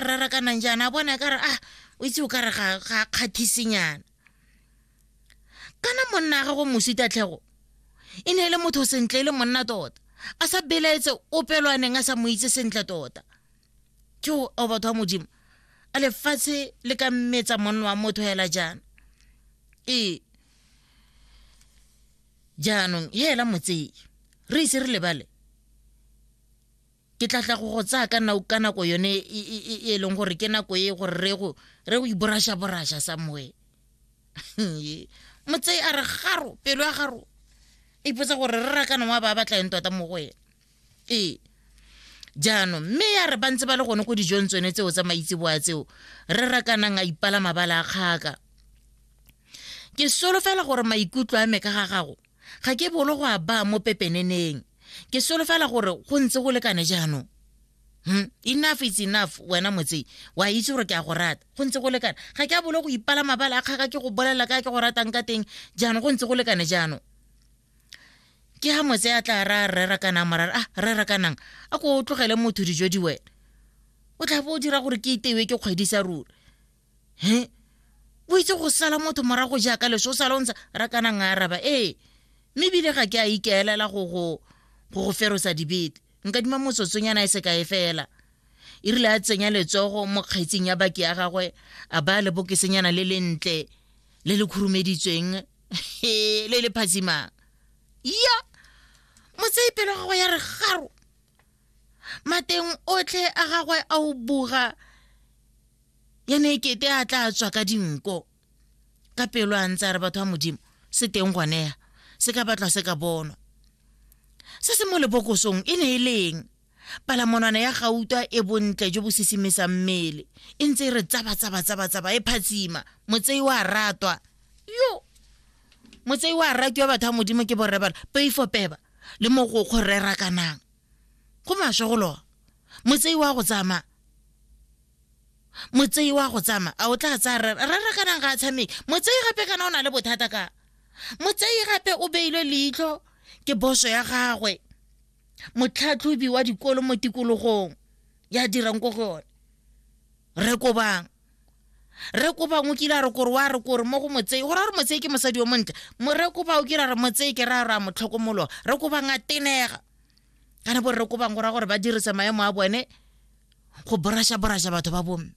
rarakanang jaana a bona kare a o itse o ka re ga ga kgathisenyana kana monna ga go mosita tlhego e ne e le motho sentle e le monna tota a sa belaetse opelwaneng a sa mo itse sentle tota ke o batho wa modimo a lefatshe le ka mmetsa monna wa motho hela jaana ee jaanong hela motseye re ise re lebale ke tla tla go go tsaya ka nako ka nako yone e, e, e, e leng gore ke nako e gore re go re go iborasha borasha somewhere motsei a re garo pelo ya garo e ipotsa gore re rakana wa ba batla eng tota mo go ena ee jaanong mme ya re ba ntse ba le gone ko dijong tsone tseo tsa maitseboa tseo re rakanang a ipala mabala a kgaka ke solofela gore maikutlo a me ka ga gago Ga ke bolo go a baa mo pepeneneng. Ke solofela gore go ntse go lekane jaanong. Hmm? Enough is enough, wena motsei. Wa itse gore ke a go rata. Go ntse go lekane. Ga ke a bolo go ipala mabala a kgaka ke go bolelela ka ke go ratang ka teng jaanong go ntse go lekane jaanong. Ke ha motse a tla ra rera kanang morara ah rera kanang a ko o tlogele motho dijo di wena. O tla bo o dira gore ke itewe ke kgwedisa ruri. he o itse go sala motho morago jaaka leso o sala o ntsha ra kana nga araba ee mme ebile ga ke a ikaelela go go go go ferosa dibete nka dima motsotsonyana e se ka e fela e rile a tsenya letsogo mo kgaitseng ya baki ya gagwe a ba le bokesenyana le lentle le le khurumeditsweng le le phatsimang ya motsei pelo gagwe ya re garo mateng otlhe a gagwe a o buga ya ne kete a tla tswa ka dinko ka pelo a ntse a re batho ba modimo se teng goneya se ka batlwa se ka bonwa se se mo lebokosong e ne e leng palamonwana ya gauta e bontle jo bo sisimisang mmele e ntse e re tsaba-tsaba-tsaba-tsaba e phatsima motsei wa ratwa yo motsei wa ratwa batho ba modimo ke borre bala peifo peba le mogokgo rera kanang go maswe go loa motsei wa go tsamaya motsei wa go tsama a o tla tsaya rara rara ka nang ga a tshameke motsei gape kana o na le bothata ka motsei gape o beilwe leitlho ke boso ya gagwe motlhatlhobi wa dikolo mo tikologong ya dirang ko go yone re kobang re kobang o kile a re kore wa re kore mo go motsei go ra re motsei ke mosadi yo montle re koba o kile a re motsei ke ra ra motlhokomolo re kobang a tenega kana bo re kobang go ra gore ba dirisa maemo a bone go borasha-borasha batho ba bomme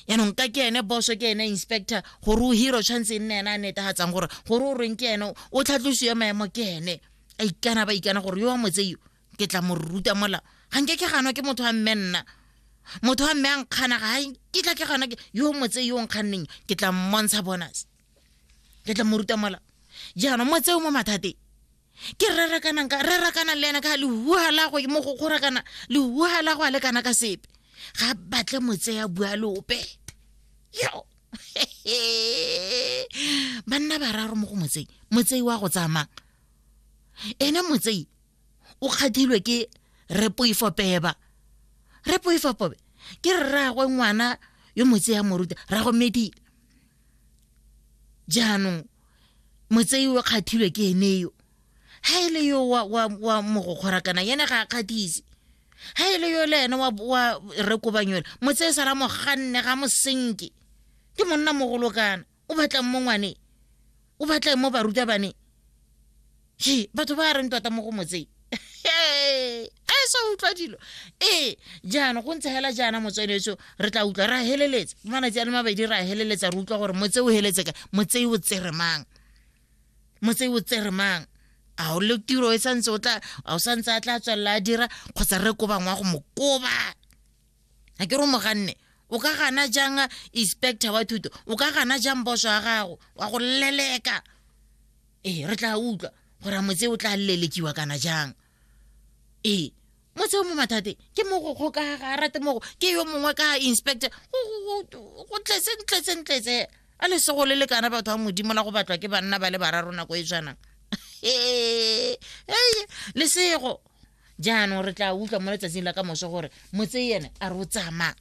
yaanong ka ke ene boso ke ene inspector gore o hiro tshwanetse e nne ene a netagatsang gore gore o reng ke ene o tlhatlosiwe maemo ke ene a ikana ba ikana gore yo wa motseyo ke tla mo ruta mola ga nke ke ganwa ke motho wa mme nna motho wa mme a nkgana ga ke tla ke ganwa ke yo motse yo nkganneng ke tla mmontsha bonus ke tla mo ruta mola jaanong motseo mo mathateng ke rerakanang ka rerakanang le ena ka lehuha la go mo go kgorakana lehuha la go a lekana ka sepe ga batle motseya bua lope yo banna bararo mo go motsei motsei wa go tsamang ene motsei o kgathilwe ke repoifopeba repoifopobe ke rragwe ngwana yo motseya moruta rrago medile jaanong motsei o kgathilwe ke ene yo ha e le yo wa, wa, wa mogokgora kana yene ga a kgathise ha e le yo le ene wa, wa rekobanyola motsei sala moganne ga mosenke ke monna mogolo kana o batlang mo ngwaneng o batla mo barutabane je batho ba reng tota mo go motseng a sa utlwa dilo ee jaana go ntse hela jaana motsweletso re tla utlwa ra heleletsa malatsi a le mabedi ra heleletsa re utlwa gore motse o heletse ka motse o tsere mang motse o tsere mang a o le tiro e santse o tla a o santse a tla tswelela a dira kgotsa re koba ngwa go mo koba a ke re moganne o ka gana jang inspector wa thuto o ka gana jang boso wa gago wa go leleka ee re tla utlwa gore a motse o tla lelekiwa kana jang ee motse o mo mathate ke mogokgo ka ga rate mogo ke yo mongwe ka inspector go tletse ntletse ntletse a le sego le lekana batho ba modimo la go batlwa ke banna ba le bararo nako e tshwanang ee lesego jaanong re tla utlwa mo letsatsing la ka moso gore motse ene a re o tsamaya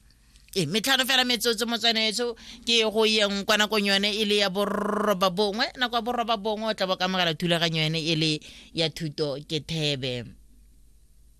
e metlhano fela metsotso motswanetso ke go yeng kwa nakong yone e le ya borroba bongwe nako ya borroba bongwe o tla bo kamogela thulaganyo yone e le ya thuto ke thebe